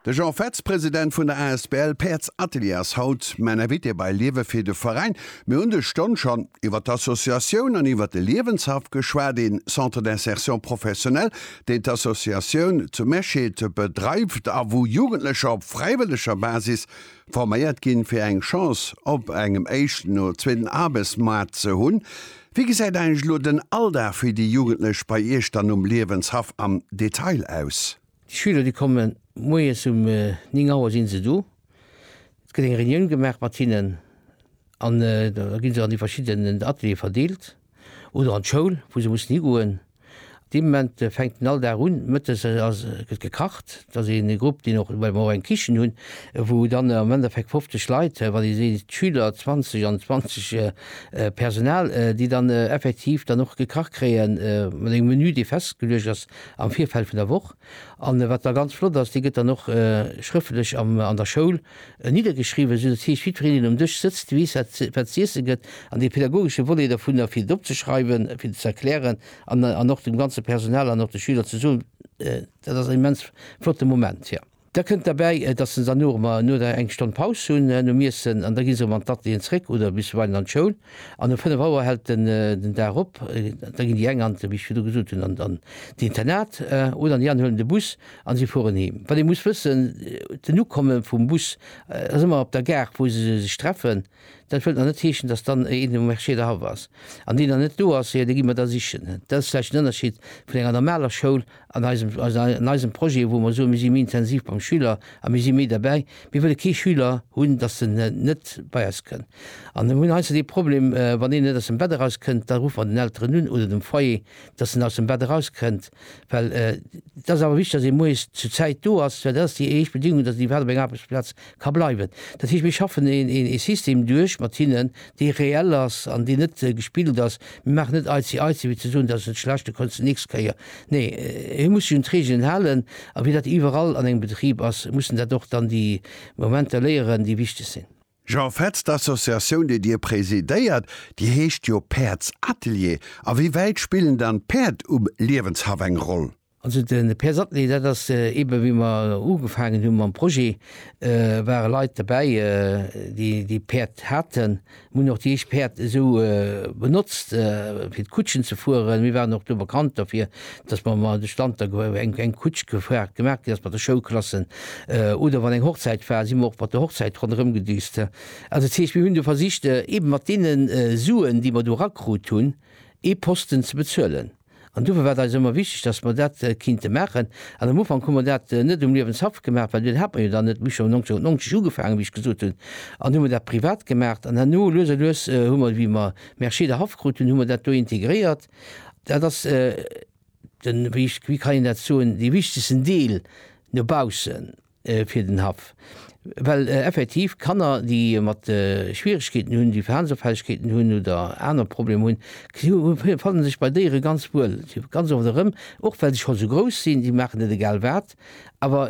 De Jean Fetz, President vun der asbl Päerds Atelier ass haut mäin Invité bei Liewe fir de Veräin. Mir hunn des Stonn schonn iwwert d'Associatioun an iwwert de Liewenshaff geschwat, ee Centre d'insertion professionnelle, deen d'Associatioun zu Mesched bedreift a wou Jugendlecher op fräiwëlleger Basis forméiert ginn, fir eng Chance op engem éischten oder zweeten Aarbechtsmaart ze hunn. Wéi gesäit eigentlech elo den Alldag fir déi Jugendlech bei Iech dann um Liewenshaff am Detail aus? Déi Schüler, déi komme moies um 9 Auer si se do. Et gëtt eng Reunioun gemaach mat hinnen an da gi se an déi verschidden Ateliere verdeelt oder an d'Schoul, wou se mussen higoen. Dee Moment fänkt en all Dag un, mëttes ass, gëtt gekacht. Et ass een Grupp, deen och, well mer och eng Kichen hunn, wou dann am Endeffekt 50 Leit, wann ee seet Schüler 20 an 20 Personal, déi dann effektiv dann och gekacht kréien, mat engem Menü, dee festgeluecht ass am Virfeld vun der Woch. An wat da ganz flott ass, dee gëtt dann och schrëftlech an der Schoul E niddergeschriwwen, esou dass heescht, jiddwereen deen um Dësch sëtzt, weess wat z'iesse gëtt, an dee pädagogesche Volet dovunner fir dat opzeschreiwen, fir dat ze erklären an och dem ganze Personal an och de Schüler ze soen, dat ass en immens flotte Moment. Jo. Da kënnt derbäi, dass se dann no eng Stonn Paus hunn nom Iessen an da gi se erëm an d'Atelieren zréck oder bisweilen an d'Schoul. An um 5 Auer hält en den Dag op. Da ginn déi eng an, wéi ech virdu gesot hunn, an d'Internat oder an déi aner huelen de Bus a si fueren heem. Wat ee muss wëssen, den Ukomme vum Bus ass ëmmer op der Gare, wou se sech treffen. Dat wëllt nach net heeschen, dass dann een um Marché derhaff ass. An deen, der net do ass, jo, dee gi mer da sichen. Dat ass vläicht en Ënnerscheed vun enger normaler Schoul an eisem, also an eisem Projet, wou mer soen, mir si méi intensiv beim Schüler a mir si méi derbäi, mir wëlle kee Schüler hunn, dass en net bei eis kënn. An mir hunn heiansdo dee Problem, wann een net aus dem Bett eraus kënnt, da ruffe mer den Elteren un oder dem Foyer, dass en aus dem Bett eraus kënnt, well et ass awer wichteg, dass ee moies zu Zäit do ass, well dat ass déi éischt Bedingung, dass en iwwerhaapt op eng Aarbechtsplaz Ka bleiwen. Dat heescht, mir schaffen ee System duerch mat hinnen, dee reell ass an deen net gespillt ass. Mir maachen net aizi aizi, fir ze soen, dat ass net schlecht, da kanns de d'nächst Kéier. Nee, hie muss sech un d'Reegelen halen. A wéi dat iwwerall an engem Betrib ass, mussen dat och dann déi Momenter léieren, déi wichteg sinn. Jean Fetz, D'Associatioun, déi Dir presidéiert, déi heescht jo Päerdsatelier. A wéi wäit spillen dann d'Päerd um Liewenshaff eng Roll? Also de Per Sattny, dat ass eebe wéi mer ugefaangen hu mam Projet, ware Leit dobäi, déi Päerd haten. Mir hunn och déi éischt Päerd esou benotzt fir d'Kutschen ze fueren. Mir waren och do bekannt dofir, datt mer mol de Stand da eng Kutsch gefragt gemaach ginn ass mat de Schoulklassen. Oder wann eng Hochzäit war, si mer och mat der Hochzäit ronderëm gedüst. Also dat heescht, mir hunn do versicht eebe mat deene Suen, déi mer do erakrut hunn, ee Posten ze bezuelen. An dofir war et eis ëmmer wichteg, dass mer dat kinnte maachen. An am Ufank hu mer dat net um Liewenshaff gemaach, well deen hat mer jo dann net. Mir hu scho 1990 ugefaangen, wéi ech gesot hunn, an hu mer dat privat gemaach. An herno, lues a lues, hu mer, wéi mer Mercier der Haff krut hunn, hu mer dat do integréiert. Dat ass den, wéi kann een dat soen, dee wichtegsten Deel no baussen. fir den Haff, well effektiv Kanner, déi mat Schwieregkeeten hunn, déi Verhalensopfällegkeeten hunn oder aner Problemer hunn, si fanne sech bei Déiere ganz wuel. Si ganz oft erëm, och well se scho sou grouss sinn, si maachen net egal wat. Awer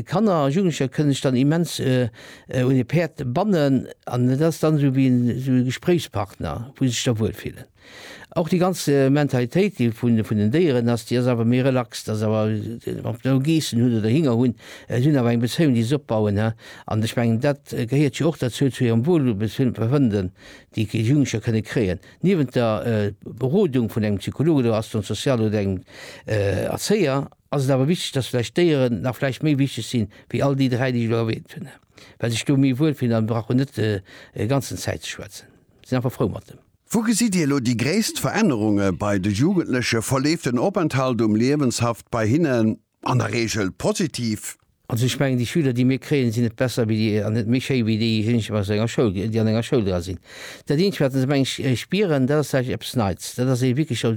Kanner a Jugendlecher kënne sech dann immens un e Päerd bannen an et ass dann esou wéi e Gespréichspartner, wou se sech da wuel fillen. Och déi ganz Mentalitéit déi vun vun den Déieren ass, déi ass awer méi relax, dass awer ob se elo Geessen hunn oder Hinger hunn, se hunn awer eng Bezéiung déi se opbauen, he. An ech mengen dat gehéiert jo och derzou zu hirem Wohlbefinden déi déi Jugendlecher kënne kréien. Niewent der Berodung vun engem Psycholog oder Assistant social oder engem Erzéier ass et awer wichteg, dass vläicht d'Déieren nach vläicht méi wichteg sinn wéi all déi dräi déi ech elo erwähnt hunn, he, well se sech do méi wuelfillen a brauchen net e ganzen Zäit ze schwätzen, sinn einfach frou mat dem. Wou gesitt Dir elo déi gréisst Verännerunge bei de Jugendlechen? Verleeft den Openthalt um Liewenshaft bei hinnen an der Reegel positiv? Also ech mengen, déi Schüler, déi mir kréien, sinn net besser wéi déi an net méi schéi wéi déijéineg aus enger Schoul, déi an enger Schoul dra sinn. Dat Eenzegt, wat se, mengen ech, spieren, dat ass eppes Neits. Dat ass ee wierklech.